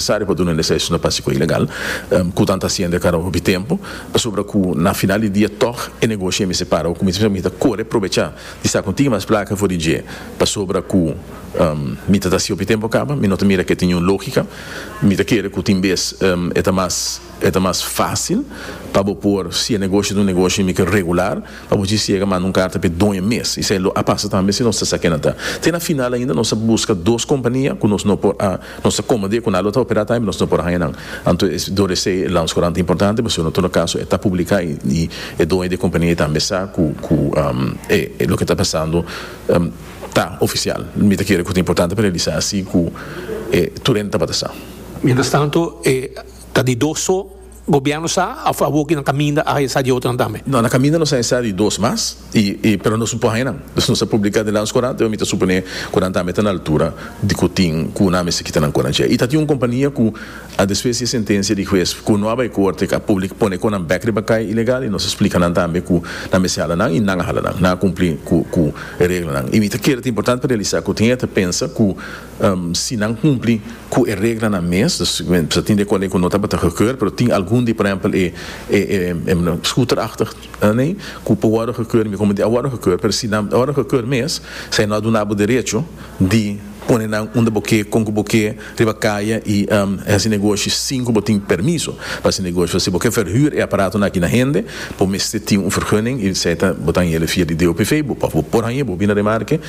Sari pa duna lisensia no pasi ku e ilegal, ku tan ta hasiendo e karaho hopi tempu, pasobra ku na final di dia tòg e negoshi a mester para. Ku mesmu esaki mi ta kore probecha di sa ku tin mas plaka for di dje, pasobra ku mi ta ta hasi hopi tempu kaba, mi no ta mira ke ta niun lógika, mi ta kere ku tin bes e ta mas e ta mas fásil pa bo por si e negoshi ta un negoshi mi ke regular pa bo dje siega manda un karta p'e doño mes. Esei lo a pasa tambe si nos ta sa ke nan ta te na final ainda nos a buska dos kompania ku nos no por a Nos ta komo di e konal lo ta operá tambe nos no por haña nan. Anto e dor esei e lanskorant importante pasobra no tur kaso e ta publiká i e doño di e kompania ei tambe sa ku ku e loke ta pasando ta ofisial. Mi ta kere ku ta importante pa realisá asi ku tur hende tabata sa. Mientras tanto e ta di dos so. Gobierno sa a of a woki nan caminda a hañsa di otronan tambe? No, na caminda nos a hañsa di dos mas y y pero nos no por haña nan. Dus nos a publica den Landscourant pero mi ta supone cu nan tambe ta na altura di cu tin cu nan mester kita nan cona dje. Y ta tin un compania cu a despues di e sentencia di huez cu no a bay corte a public pone con nan bek riba cay ilegal y nos a splica nan tambe cu nan mester hala nan y nan a hala nan, nan a cumpli cu cu e reglanan. Y mi ta kere ta importante pa realisa cu tin e ta pensa cu Si nan cumpli cu e reglanan mes, ta tin ecuale cu no tabata gekeurd, pero tin algun di, por ehempel, e scooterachtig ding cu por wordo gekeurd y mi comenti a wordo gekeurd, pero si nan a wordo gekeurd mes, esai no a duna bo derecho di pone nan unda bo ke, con cu bo ke riba caya y haci negoshi sin cu bo tin permiso pa haci negoshi. Pues si bo ke verhuur e aparatonan aki na hende, bo mester tin un vergunning y esai ta, bo ta haña el e via di DOPV, bo por haña, bo bina Remarque.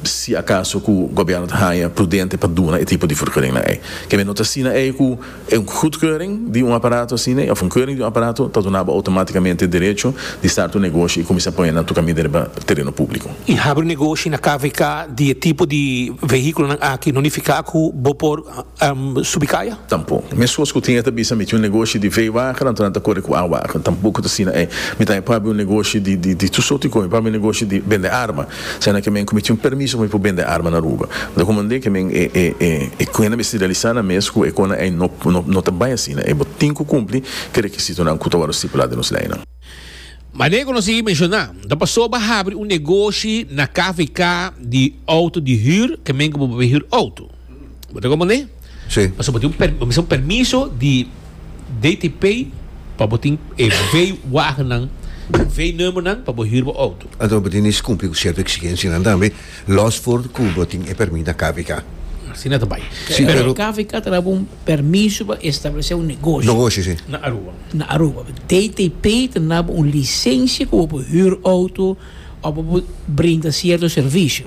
si acaso cu gobierno ta haya prudente pa duna e tipo di furkeuringnan ey. Kende no ta asina ey cu e un goedkeuring di un aparato asina of un keuring di un aparato ta dunaba automaticamente derecho di start un negoshi y cuminsa pone nan tucami derba tereno publico. Y habri negoshi na kvk di e tipo di vehiculonan aki no nifica cu bo por. subi kaya. Tampo. Mescos cu tin e ta bisa mi tin un negoshi di vee wagen anto nan ta core cu awagen. Tampoco ta asina ei. Mi ta pabi un negoshi di tur soorti cos. Mi pabi un negoshi di bende arma. Siana ke men cu mi tin un permiso pa mi por bende arma na Aruba. Unda cu mande ke men e cuennan mester realisá nan mes cu e cosnan ei no ta bay asina ei. Bo tin cu cumpli ke requisitonan cu ta worde stipulá den nos leynan. Mane cu nos a mencioná, ta pasó bo a habri un negoshi na KVK di auto di huur ke men cu bo papia huur auto. Bo ta komprendé? Sí. Paso bo tin un, per, un permiso di DTP pa bo tin e veewagennan, veenummernan pa bo huur bo auto. Anto bo tin nes kumpli ku sierto eksigensianan tambe, los for ku bo tin e permit na KVK. Asina ta bai. Sí, Pero pero KVK ta daba un permiso pa establesé un negoshi negoshi, sí. Na Aruba. na Aruba. DTP ta daba un lisensia ku bo por huur auto of bo por brinda sierto servisio.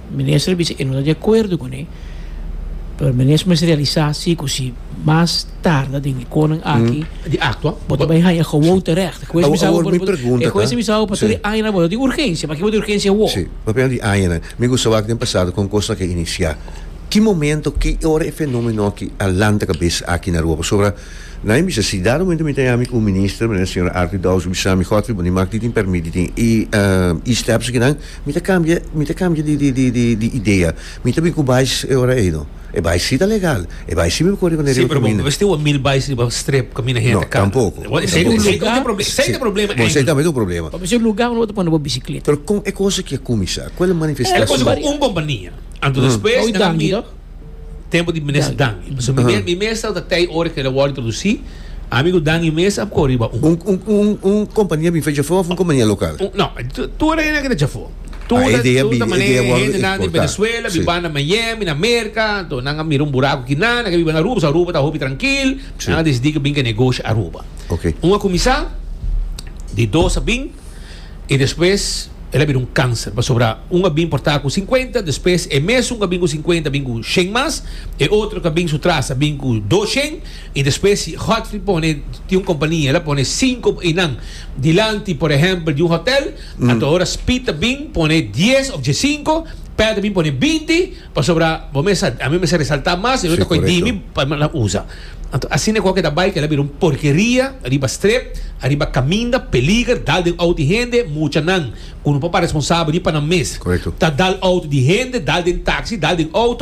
Minister a bisa e no ta di akuerdo ku ne, pero minister mester realisá si ku si mas tarda den e konan aki di aktua bo ta bai haña gewoon terècht. E hues bisa bo por e hues a bisa bo pasobra e añanan bo ta di urgensia. Pakiba bo ta di urgensia awor? Sí, bo ta pensa di añanan. Mi gusta wak den pasado kon kos aki a inisiá. Ki momento, ki ora e fenómeno aki a lanta kabes aki na rua? Pasobra nan mi bisa si dado momento mi ta yami un minister manera señora Artie Douse a bisa mi, Godfrey, bo ni mak tin pèrmit, tin e stèps akinan. Mi ta cambia, mi ta cambia di, di, di, di, di idea. Mi ta bin cu bais e ora ey, no. E bais si ta legal. E bais si mi por cori cu ne Sí, riba pero bo camina. mester wak mil bais riba strip camina hende No, cana. tampoco, Bo, esey tampoco. esey tampoco. problem, esey Sí. ta problema Bo, esey Angie. tambe ta un problema. Pa mi ser lugar unda bo ta pone bo bicicleta. Pero con e cosa kia cuminsa? Cual e manifestacion? Ela cosa cu un compañia. Anto despues Oye, nan a danki, mira. to. tempo di minister Dangi. So mi, mi meestal ta tei ora ke wòrdu introdusi, ami ku Dangi mesa ap kore riba un. Un un un un kompania bife Jafó of un kompania lokal? No, tur e hende ke ta Jafó. Tur tur ta manera e hende nan di Venezuela bin banda Miami na Merka, enton nan a mira un buraku kina, nan ke biba na Aruba paske Aruba ta hopi trankil, nan a desidi ke bin ke negoshi Aruba. Un a kuminsá, di dos a bin. i despues el a bira un kanser, pasobra un a bin por ta ku sinkuenta, despues e mesun ku a bin ku sinkuenta a bin ku shen mas, e otro ku a bin su tras a bin ku dos shen, i despues si Godfrey pone tin un kompania el a pone sinku i nan dilanti por ehèmpel di un hotèl, ato ora Speed a bin pone dies òf dje sinku, Pat a bin pone binti. Pasobra bo mesa, a mi mester resalta mas y otro coe dimi pa me la usa. Anto asina cu a keda bai keda bira un porkeria riba strep, ariba caminda peliger dal den auto di hende, muchanan cu no por pa responsabel di pa nan mes ta dal auto di hende, dal den taxi, dal den auto.